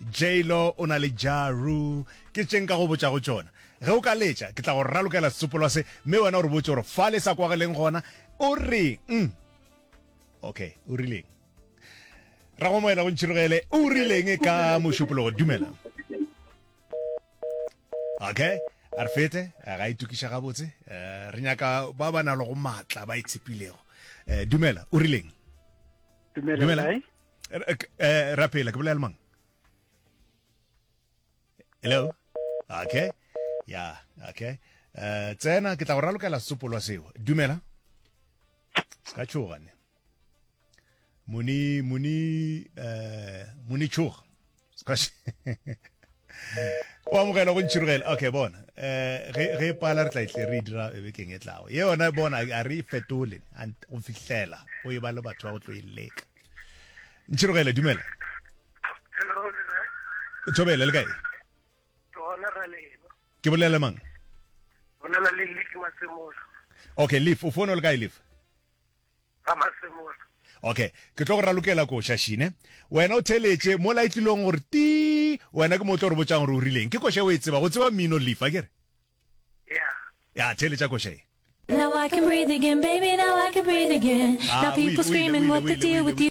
J-Lo o na le Ja Rule, ke tše nka go botšago tšona. Ge o ka letša, ke tla go ralokela setsopolwa se, mme wena o re botše gore fa le sa kwageleng gona, o reng? Okay, o rileng? Ragomoela go ntšhirogele, o rileng ka mošupologo? Dumela. Okay, a re fete, a ga itokiša gabotse. Eh, re nyaka ba ba nalogo maatla, ba itshepilego. Eh, dumela, o rileng? Dumela, Dumela. Rai. eh, rapela ke bolela mang hello okay ya yeah, okay uh, tsena ke tla go ralokela setsopolwa seo dumela se ka tšhogane muni muni uh, muni tšhoga o amogela go ntšhirogela okay bona um ge e pala re tla itle e re e dira e bekeng e tlago ye yona bona a re e fetole go fihlela o e ba le batho ba go tlo e leka ntšhirogele dumela thobele le kae ke bolela mang okay leaf o fono le kae leaf ba Masemola. Okay, ke tlo go ralokela ko, Shashi, ne? Wena o theletše, mola e tlilong go re tii, wena ke mo o tlo re botšang gore o rileng. Ke koša e o e tsebago, o tseba mmino, Leaf, a ke re? Ya. Ya, theletša koša ye. Now I can breathe again, baby, now I can breathe again. Now people screaming, what the deal with you?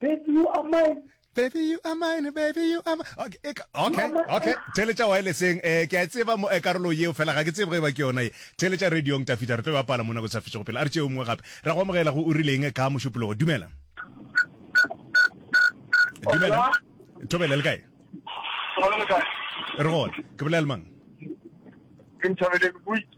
Baby you are mine. Baby you are mine, baby you are mine. Okay, e ka- okay, You are my- okay. Theletša wirelesseng. Eh, ke a e tseba mo- eh, karolo yeo fela ga ke tsebe ge ba ke yona ye. Theletša radiong Tafita re tlo ba pala mona go sa fetšego pele. A re tšeo mongwe gape. Ra go amogela go o rileng ka mošupologo. Dumela. Dumela. Thobela le kae? Re gona. Ke bolela le mang? Ke Nthabeleng Buitse.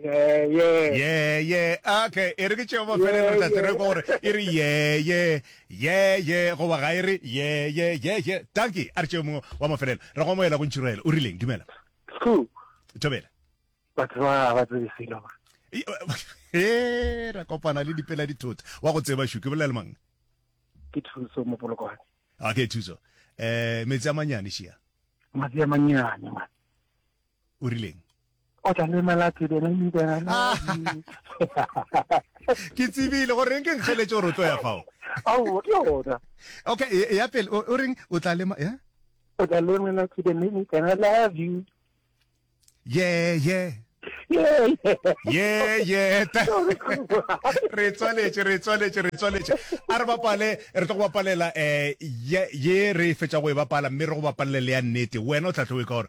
Yeah, yeah. yeah yeah ah, okay e re ke tšeo mafelelo re tla tsere kwa gore e re yeah yeah yeah yeah goba ga e re yeah yeah yeah yeah tanki a re tšeo mongwe wa mafelelo re go amoela go ntšhiraela o rileng dumela Cool. tobela Batho ba ba tsebe selo. ba. e eh, ra kopana le dipela dithota wa go tseba shuke bolela le mang Ke thuso mo polokwane. okay thuso eh metsi a manyane shia Matsi a mannyane man. o rileng o tla le malatsi bena le bena ah. ke tsebile go reng ke nkgeletse gore o tlo ya fao ao ke yona okay e, e ya pele o reng o tla le ya o tla le malatsi bena le bena love you yeah yeah ye ye re tswaletše re tswaletše re tswaletše a re bapale re tlo go bapalela um ye re fetsa go e bapala mme re go bapalele ya nnete wena o tla tlo e ka gore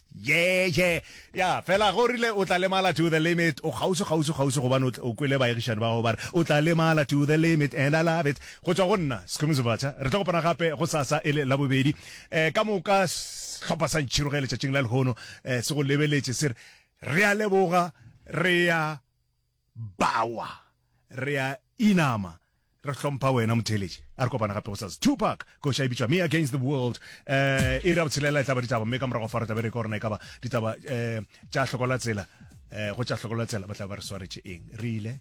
Ye, ye. Ya, fela ge o rile o tla lemala to the limit, o kgauswi, kgauswi, kgauswi gobane o, o kwele baegišani ba gago ba re, o tla lemala to the limit, and I love it. Go tšwa go nna, Skhumi Zivhatsha, re tlo kopana gape gosasa e le Labobedi. Eh, ka moka sehlopha sa Ntšhiroge letšatšing la lehono, eh, se go lebeletše se re, Re a leboga, re a. Bawa! Re a inama. Re hlompha wena motheeletši. A re kopana gape gosasa. Tupac! Koša e bitšwa Me Against the World. Um, iri ya botshelela e tla ba ditaba, mme ka morago fa re tla be re ekwa gore na e ka ba ditaba um tša hlokola tsela. Um, go tša hlokola tsela ba tla be ba re swaretše eng? Re ile.